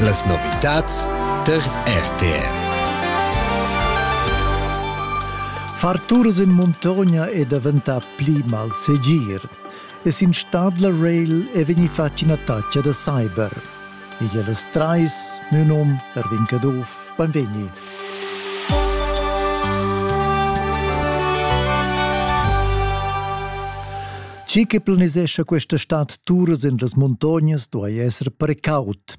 Las novitads tar RTR. Far tours in muntogna è daventà pli malsegir e sin Stadler Rail è vegnì fatg ina taccia da cyber. Igl è las trais, mio num Erwin Caduff, benvegni. Chi che planisescha questa stad turas en las muntognas duai esser precaut.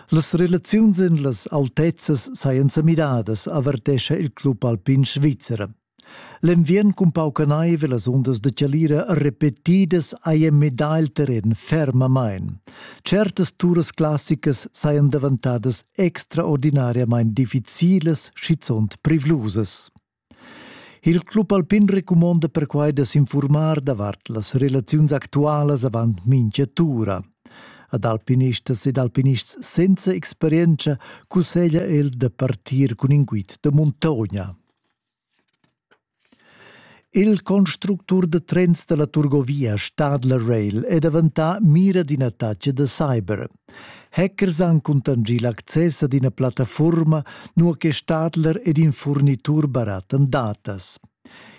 Las relaziuns en las autezzas sajan sa midadas, avertescha il club alpin svizzer. L'enviern cun pauca naiv e las ondas de chalira repetidas hajan midà il terren fermamain. Certas turas classicas sajan davantadas extraordinariamain difficilas, schizunt privlusas. Il club alpin recumonda perquai da s'infurmar davart las relaziuns actualas avant mintga tura. Ad alpinistas ed alpinists senza experienza cusseglia el da partir cun in guid da muntogna. Il constructur da trens da la Turgovia Stadler Rail è daventà mira d'in attacc da cyber. Hackers han cuntanschì l'access ad ina plattafuorma, nua che Stadler ed in furnitur barattan datas.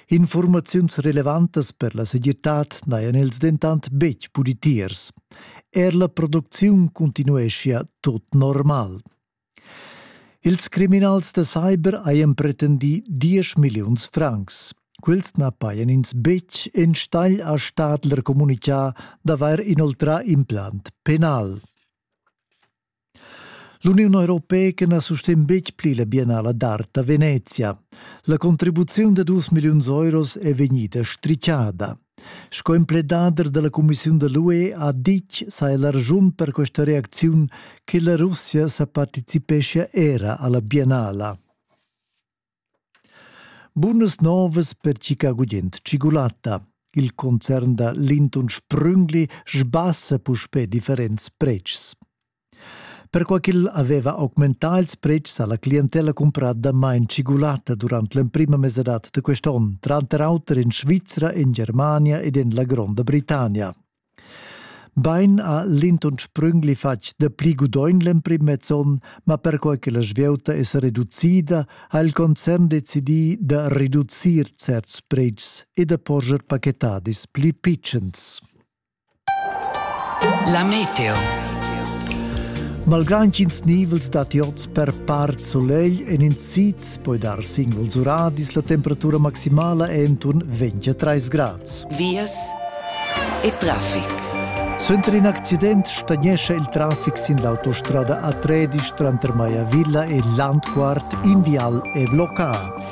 Informaziuns relevantas per la segirtad n'hajan els dentant betg pudi tiers. Er la producziun cuntinueschia tut normal. Ils criminals da cyber hajan pretendì diesch milliuns francs. Quels na pajan ins betg enstagl a Stadler communitgà d'avair inoltrà implant penal. L'Uniun europeica na sustegn betg pli la biennala d'art a Venezia. La contribuziun da dus milliuns euros è vegnida stritschada. Sco impledader dalla cumissiun da l'UE ha ditg sai la raschun per questa reacziun che la Russia sa participeschia era alla biennala. Bunas novas per Chicago gent cigulatta. Il concern da Linton Sprüngli sbassa puspè differents pretschs. Perquai ch'el aveva augmentà ils pretschs ha la clientella cumprà damain tschigulatta durant l'emprima mesadad da quest onn, tranter auter en Svizra, en Germania ed en la Gronda Britannia. Bain ha Linton Sprüngli fatg dapli gudogn l'emprim mez onn, ma perquai che la svieuta è sa reducida, ha il concern decidì da reducir certs pretschs e da porscher pachetadis pli pitschens. La meteo. Malgrà intgins nivels dad iots per part solegl en in sid poi dar singuls uradis, la temperatura maximala è enturn 23 grads. Vias e traffic. Suenter in accident stagnescha il traffic sin l'autostrada A13 tranter Maiavilla e Landquart in vial e bloccà.